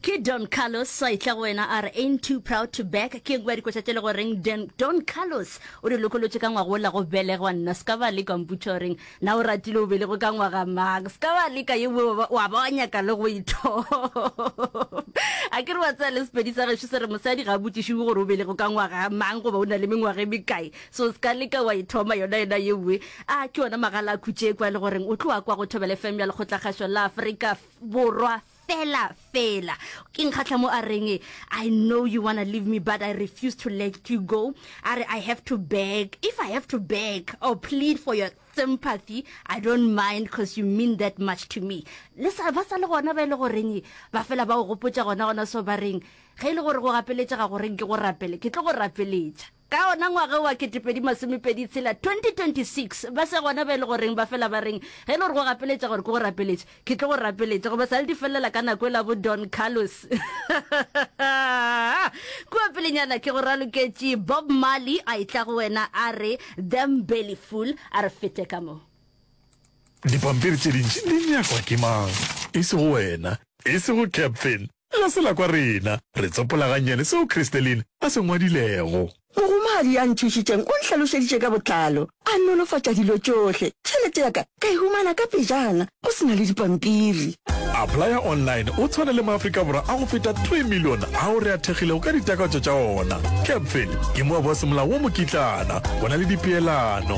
ke don carlos sa itla go wena a re ain't too proud to back ke ngwa dikotša tše le goreng Den- don carlos o di lokolotše ka ngwago la go belegwa nna se ka ba leka mputša goreng na o ratile o belego ka ngwaga mang se ka ba leka ye wa ba- wa ba wa nyaka le go ithoba a ke re wa tsaya le sepedi sa gešo se re mosadi ga a botšišiwe gore o belego ka ngwaga mang goba o na le mengwaga e mekae so se ka leka wa ithoma yona yona ye nngwe a ke yona magala a khutše kwa le goreng o tloa kwa go thobele fm ya lekgotlakgašo la afrika Borwa fela fela. Ke nkgahla mo a reng I know you wanna leave me but I refuse to let you go. A re I have to beg. If I have to beg or plead for your sympathy, I don't mind because you mean that much to me. Le sa ba sa le gona ba e le goreng ba fela ba o gopotša gona gona so ba reng ge e le gore go gapeletša ga go reng ke go rapele ke tlo go rapeletša. Ka ona ngwaga wa ketepedi masomepedi tshela, 2026, ba se gona ba e le goreng ba fela ba reng, ge e le gore go gapeletša gore ke go rapeletše, ke tlo go rapeletša, goba sa le di felelela ka nako e la bo Don Carlos. Kua pelenyana ke go raloketše Bob Marley a etla go wena a re, Them Belly Fool, a re fete ka mo. Dipampiri tše dintši di nyakwa ke mang? E sego wena, e sego Captain. Ga se la kwa rena. Re tsopola gannyane seo Christeline a se ngwadilego. Mohumagadi ya nthušitšeng o nhlalošeditše ka botlalo, a nolofatša dilo tšohle. Tšhelete ya ka ka e humana ka pejana, go se na le dipampiri. Applya Online o tshwana le Maafrika Borwa a go feta three million ao re a thekgilego ka ditakatso tša ona. Captain ke moaboasemolao wo mokitlana. Go na le dipeelano.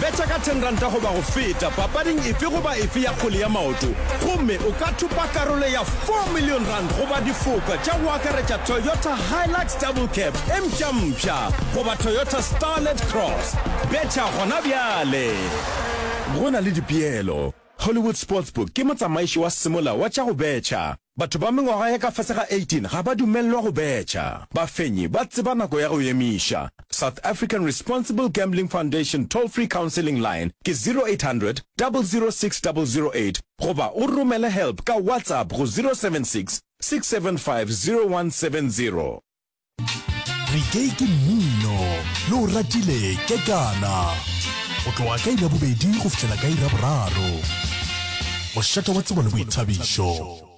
Betšha ka 10 ranta goba go feta papading efe goba efe ya kgwele ya maoto gomme o ka thopa karolo ya 4 million rand goba difoka tša go akaretša Toyota Hilux Double Cab e mpšampša goba Toyota Starlet Cross. Betšha gona bjale! Go na le dipeelo. Hollywood Sportsbook ke motsamaiši wa semolao wa tša go betšha. Batho ba mengwaga ya ka fase ga 18 ga ba dumelelwa go betšha. Bafenyi ba tseba nako ya go emiša. South African Responsible Gambling Foundation toll-free counselling line ke 0800 006 008 goba o romele help ka WhatsApp go 076 675 0170. Re ke ke mmino yo o ratile ke kana go tloga ka iri ya bobedi go fihlela ka iri ya boraro. Mošate wa tsebo le boithabišo.